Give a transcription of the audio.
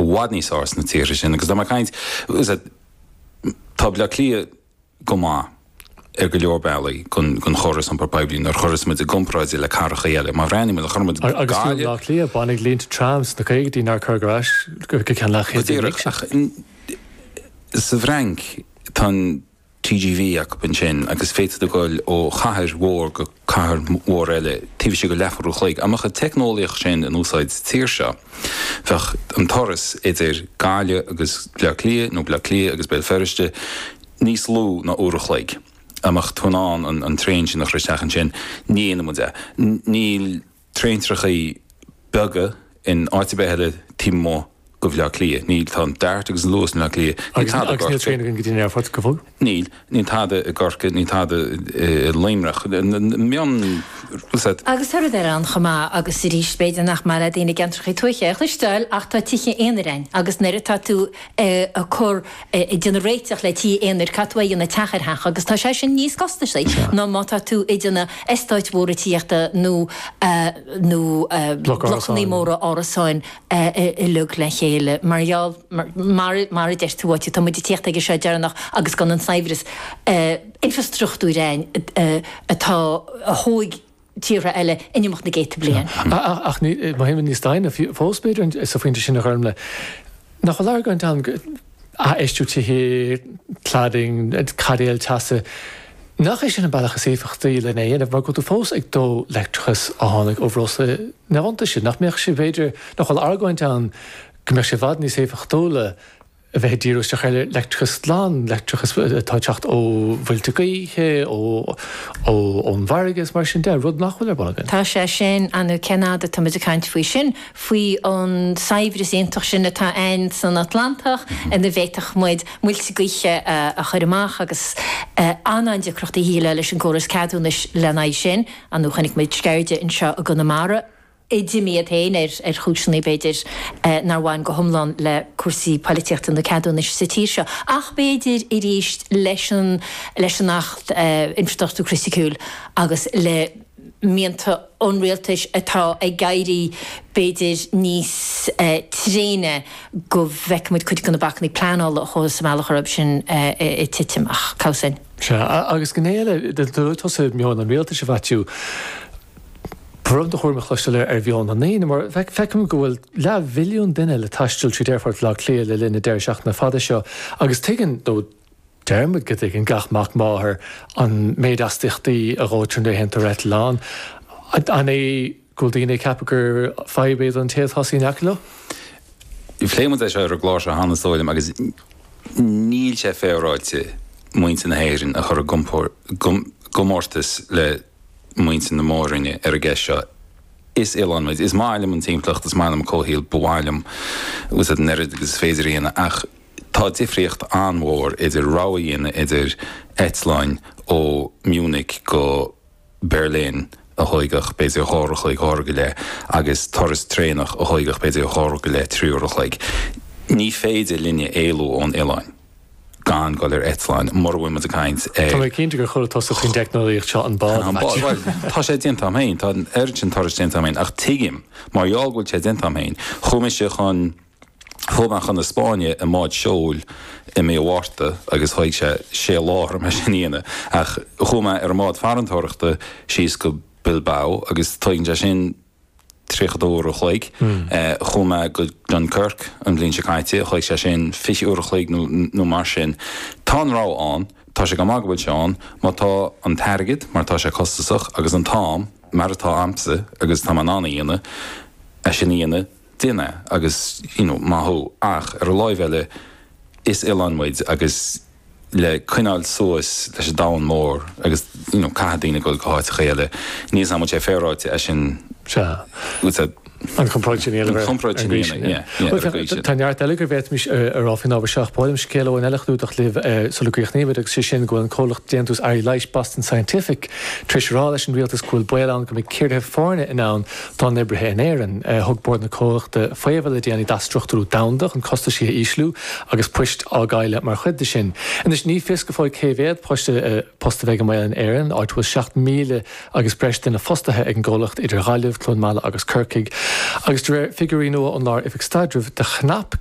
i bhfad níos fearr sna tíortha sin agus dá mbeadh caint, is dóigh, tá Bleá Cliath go maith ar go leor bealaí don chóras iompair poiblí nuair a chuireas muid i gcomparáid le cathracha eile. Má bhreathnaíonn muid le cur muid Gaillimh. Agus fiú i mBleá Cliath baineadh línte tram sna caogaidí nár cuireadh ar ais go ceann leathchéad bliain anois. Go díreach ach sa bhFrainc tá an TGV acu ansin agus féadfaidh tú dul ó chathair mhór go cathair mhór eile taobh istigh de leathuair an chloig. Dá mbeadh an teicneolaíocht sin in úsáid sa tír seo, bheadh an turas idir Gaillimh agus Bleá Cliath nó Bleá Cliath agus Béal Feirste níos lú ná uair an chloig. Dá mbeadh tú in ann an traein sin a chur isteach ansin, ní dhéanfaidh muid é. Níl. traentrachaí beaga in áit ar bith eile taobh amuigh de Bhleá Cliath. Níl, tá an DART agus an Luas i mBleá Cliath. Níl tada i gCorcaigh. Agus níl traein againn go dtí an aerfort, go fóill. Níl, níl tada i gCorcaigh, níl tada i Luimneach. Mion, bhfuil sa? Agus tá rud eile ann chomh maith agus arís b'fhéidir nach maith le daoine i gceantrachaí tuaithe a chloisteáil ach tá tithe aonair ann agus nuair atá tú ag cur, ag déanamh réiteach le tithe aonair caithfidh tú a dhéanamh teach ar theach agus tá sé sin níos costaisí ná má tá tú ag déanamh eastáit mhóra tithíochta nó nó blocanna móra árasáin i log le chéile mar gheall mar mar a deir tú áit tá muid ag teacht aige seo deireanach agus gan an saibhreas infreastruchtúir ann atá a thóig tíortha eile in imeacht na gcéadta bliain. Ach má théann muid níos doimhne fós b'fhéidir sa phointe sin a Ghormlaith, nach bhfuil argóint ann, aisfheistiú tithe, cladding, caidéil teasa, nach é sin an bealach is éifeachtaí len é a dhéanamh mar go bhfuil tú fós ag dó leictreachas a tháinig ó bhreosla iontaise? Nach mbeadh sé b'fhéidir, nach bhfuil argóint ann go mbeadh sé i bhfad níos éifeachtúla, a bheith ag díriú isteach ar leictreachas glan, leictreachas atá ag teacht ó mhuilte gaoithe, ó, ón bhfarraige is mar sin de, rud nach bhfuil ar bun againn. Tá sé sin ann nó cén fhad atá muid ag caint faoi sin, faoi an saibhreas iontach sin atá ann san Atlantach ina bhféadfadh muid muilte gaoithe a chur amach agus an, an deacracht a bhí le, leis an gcóras ceadúnais lena aghaidh sin ann nó chonaic muid Sceirde anseo i gConamara. i dtitim é féin ar chúiseanna, b'fhéidir, nár bhain go hiomlán le cúrsaí polaitíochta nó ceadúnais sa tír seo. Ach b'fhéidir arís leis an leis an Acht Infreastruchtúr Criticiúil agus le mianta an rialtais atá ag éirí b'fhéidir níos tréine go bhfeicfidh muid cuid de na bacanna pleanála a chuaigh sa mbealach air sin ag titim. Ach cabhsa in. Sea. Agus gné eile, dúirt tusa meon an rialtais a Mhaitiú. B'aisteach a chuir mé cloisteáil air ar mheon na ndaoine mar feicim go bhfuil leathmhilliún duine le taisteal tríd aerfort Bhaile Átha Cliath le linn na deireadh seachtaine fada seo agus tuigeann, nó deir muid go dtuigeann, gach mac máthar an méid astaíochtaí a dhóitear nuair a théann tú ar eitilt. An é go bhfuil daoine ag ceapadh gur fadhb é don té a tá ina shuí in aice leo? Phléigh muid é seo ar an gclár seo cheana, is dóigh liom, agus níl sé féaráilte muintir na hÉireann a chur i gcomórtas le muintir na Mór-Roinne ar an gceist seo. Is oileán muid. Is maith liom an timpeallacht, is maith liom an comhshaol, ba mhaith liom an oiread agus is féidir a dhéanamh ach tá difríocht an-mhór idir rogha a dhéanamh idir eitleáin ó Munich go Berlin a thóigfeadh b'fhéidir dhá uair a chloig, dhá uair go leith, agus turas traenach a thóigfeadh b'fhéidir dhá uair go leith, trí uair a chloig. Ní féidir linne éalú ón oileán. gan dul ar eitleán, mura bhfuil muid ag caint ar. Tá mé cinnte gur chuala tusa faoin teicneolaíocht seo, an bád, a Maitiú. Bhuel, tá sé déanta agam féin, tá an oiread sin turais déanta agam féin, ach tuigim, mar gheall go bhfuil sé déanta agam féin. Chuaigh mise chun, chuaigh mé chun na Spáinne i mbád seoil i mí an Mhárta agus thóg sé sé lá orm é sin a dhéanamh, ach chuaigh mé ar an mbád farantóireachta síos go Bilbao agus tóigeann sé sin, 30 uair an chloig. Chuaigh mé go Dunkirk an bhliain seo caite, thóig sé sin 20 uair an chloig nó mar sin. Tá an rogha ann, tá sé go maith go bhfuil sé ann, má tá an t-airgead, mar tá sé costasach, agus an t-am, mar atá a'msa agus tá mé in ann a dhéanamh, é sin a dhéanamh, déan é agus you know maith thú. Ach ar an lámh eile, is oileán muid agus. le coinneáil suas leis an domhan mór agus you know caithfidh daoine dul go háiteacha eile. Ní shílim go bhfuil sé féaráilte é sin. Sea. Agus a. An chomparáid sin a dhéanamh ar. An chomparáid sin a dhéanamh, yeah, yeah, ar an gcaoi sin. Tá neart eile go bhféadfaimis a rá faoin ábhar seo ach ba mhaith liom scéal amháin eile a chlúdach libh sula gcríochnaímid agus sé sin go bhfuil an comhlacht déantús earraí leighis Boston Scientific tar éis a rá leis an rialtas go bhfuil baol ann go mbeidh ciorruithe foirne i ndán dá n-oibrithe in Éirinn. Thug bord an chomhlachta faomhadh le déanaí d'athstruchtúrú domhanda chun costaisí a ísliú agus poist á gcailleadh mar chuid de sin. Anois ní fios go fóill cé mhéad post a bheidh i mbaol in Éirinn, áit a bhfuil 7,000 agus breis duine fostaithe ag an gcomhlacht idir Ghaillimh, Cluain Meala agus Corcaigh agus de réir figiúirí nua ón Lár Oifig Staidrimh do chrap